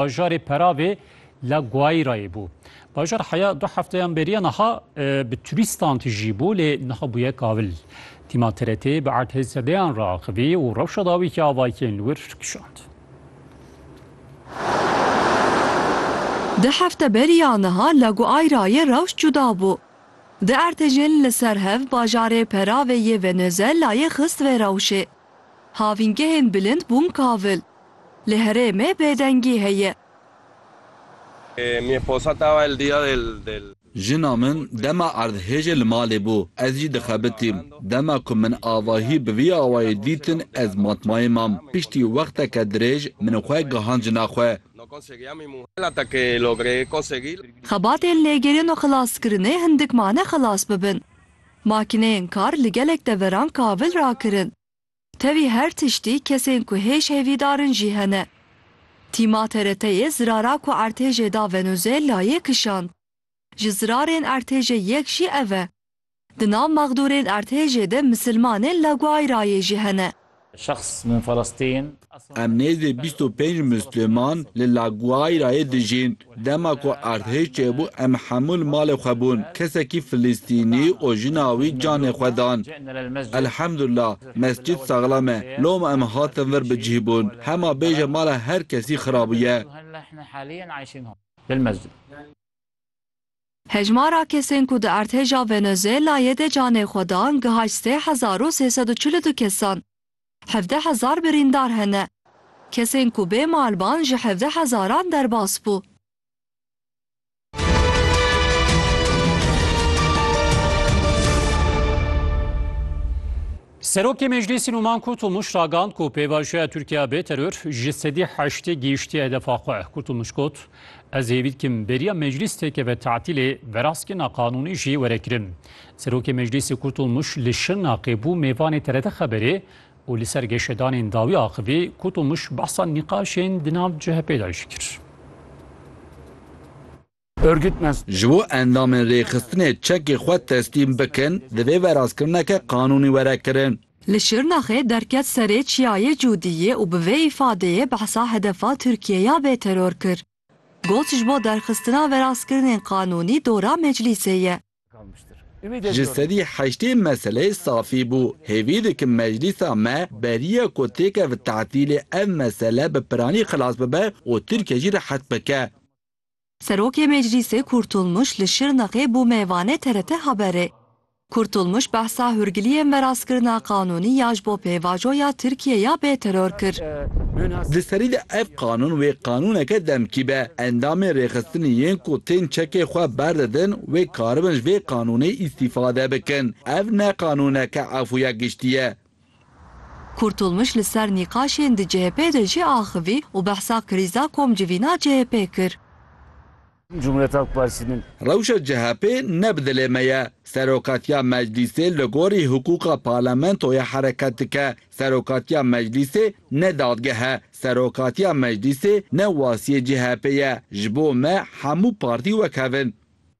bajarê Peravê la Guairayê bû. Bajar heya du hefteyan beriye niha e, bi turîstan tijî bû lê niha bûye kavil. Tîma TRT bi erdhê sedeyan re axivî û rewşa dawî ki avayikê li wir kişand. Di hefte beriya niha la Guairayê rewş cuda bû. Di ertejên li ser hev bajarê Peravê yê Venezuelayê xist vê rewşê. Havîngehên bilind bûn kavil. Li herêmê bêdengî heye. Jina min dema erdhêjê li malê bû, ez jî dixebitîm. Dema ku min avahî bi vî awayî dîtin ez matmayê mam. Piştî wexteke dirêj min xwe gihand jina xwe. Xebatên lêgerîn û xilaskirinê hindik mane xilas bibin. Makîneyên kar li gelek deveran kavil rakirin. Tevî her tiştî kesên ku hêj hêvîdar in jî hene. Tîma TRT'yê zirara ku ertêjê da Venûzêlayê kişand. Ji zirarên ertêjê yek jî ev e. Di nav mexdûrên ertêjê de misilmanên La Guairayê jî hene. Şexs min Felestîn. Em nêzdî bîst û pênc Musliman li La Guairayê dijîn. Dema ku erdhej çêbû em hemû li malê xwe bûn. Kesekî Filistînî û jina wî canê xwe dan. Elhemdullah mescîd saxlam e. Loma em hatin vir bi cih bûn. Hema bêje mala her kesî xirabûye. Hejmara kesên ku di Erdhêja Venezuelayê de canê xwe dan gihayt sê hezar û sê sed û çil û du kesan. Hevdeh hezar birîndar hene. Kesên ku bê malban ji hevdeh hezaran derbas bû. Serokê Meclîsî Nûman Kurtulmuş ragand ku pêvajoya Tirkiya bê teror ji sedî heştê gihiştiye hedefa xwe. Kurtulmuş got, Ez hêvî dikim beriya meclîs têkeve tatîlê, veraskirina qanûnî jî were kirin. Serokê Meclîsê Kurtulmuş li Şirnaqê bû mêvanê TRT Xeberê û li ser geşedanên dawî axivî, Kurtulmuş behsa nîqaşên di nav CHP'ê de jî kir. Örgütmez. Ji bo endamên rêxistinê çekê xwe teslîm bikin, divê verazkirineke qanûnî were kirin. Li Şirnaxê derket serê Çiyayê Cûdiyê û bi vê îfadeyê behsa hedefa Tirkiyê ya bêteror kir. Got ji bo derxistina verazkirinên qanûnî dora meclîsê ye. Ji sedî heştê meseleyê safî bû. Hêvî dikim meclîsa me beriya ku têke bi tetîlê ev mesele bi piranî xilas bibe û Tirkiye jî rehet bike. Serokê Meclîsê Kurtulmuş li Şirnexê bû mêvanê TRT Haberê. Kurtulmuş behsa hûrgiliyên veraskirina qanûnî ya ji bo pêvajo ya Tirkiyê ya bê teror kir. Di serî de ev qanûn wê qanûneke demkî be. Endamên rêxistinê yên ku tên çekê xwe berdidin wê karibin ji vê qanûnê îstîfade bikin. Ev ne qanûneke efûya giştî ye. Kurtulmuş li ser nîqaşên di CHP'ê de jî axivî û behsa krîza komcivîna CHP'ê kir. Cumhuriyet Halk Partisi'nin. Rewşa CHP'ê ne bi dilê me ye. Serokatiya Meclîsê li gorî hiqûqa parlamentoya hereket dike. Serokatiya Meclîsê ne dadgeh e. Serokatiya Meclîsê ne wasiyê CHP'ê ye. Ji bo me hemû partî wek hev in.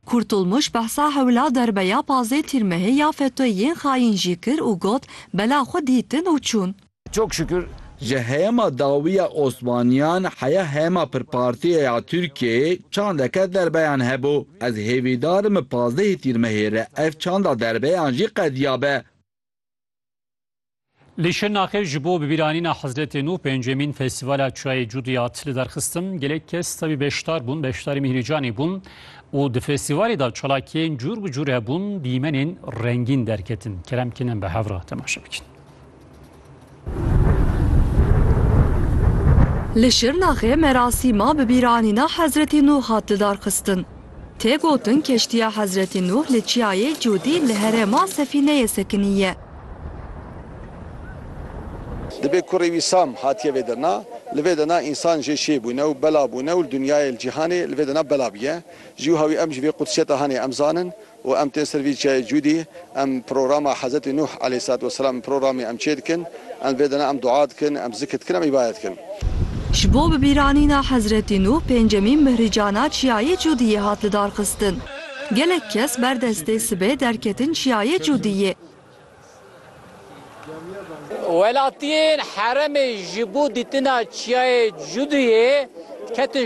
Kurtulmuş behsa hewla derbeya pazê tîrmehê ya FETÖ'yê yên xayîn jî kir û got, Bela xwe dîtin û çûn. Çok şükür ji heyema dawiya Osmaniyan heya heyema pirpartiye ya Tirkiyeyê çandeke derbeyan hebû. Ez hêvîdar im pazdehê tîrmehê re ev çanda derbeyan jî qediyabe. Li Şirnaxê ji bo bibîranîna Hezretê Nû pêncemîn Festîvala Çayê Cudiyat li derxistin gelek kes tevî beşdar bûn, beşdarî Mîhrîcanê bûn û di festîvalê de çalakiyên cûr bi cûr hebûn, dîmenên rengîn derketin. Kerem Kinem bi hev re temaşe bikin. Li Şirnaxê merasîma bibîranîna Hezretê Nû hat lidarxistin. Tê gotin keştiya Hezretî Nuh li çiyayê Cûdî li herêma Sefîneyê sekinî ye. Dibê kurê wî Sam hatiye vê dirna. Li vê dirna însan jê şêy bûne û bela bûne û li dinyayê, li cîhanê li vê dirna bela bûye. Ji wiha wî em ji vê qudsiyeta hanê em zanin û em tên ser vî çiyayê Cûdî. Em programa Hezretî Nuh aleyhîsselatü vesselam programê em çê dikin, em vê dana em dua dikin, em zikr dikin, em îbadet dikin. Ji bo bibîranîna Hezretî Nuh pêncemîn mihricana Çiyayê Cûdiyê hat lidarxistin. Gelek kes ber destê sibê derketin Çiyayê Cûdiyê. Welatiyên heremê ji bo dîtina Çiyayê Cûdiyê ketin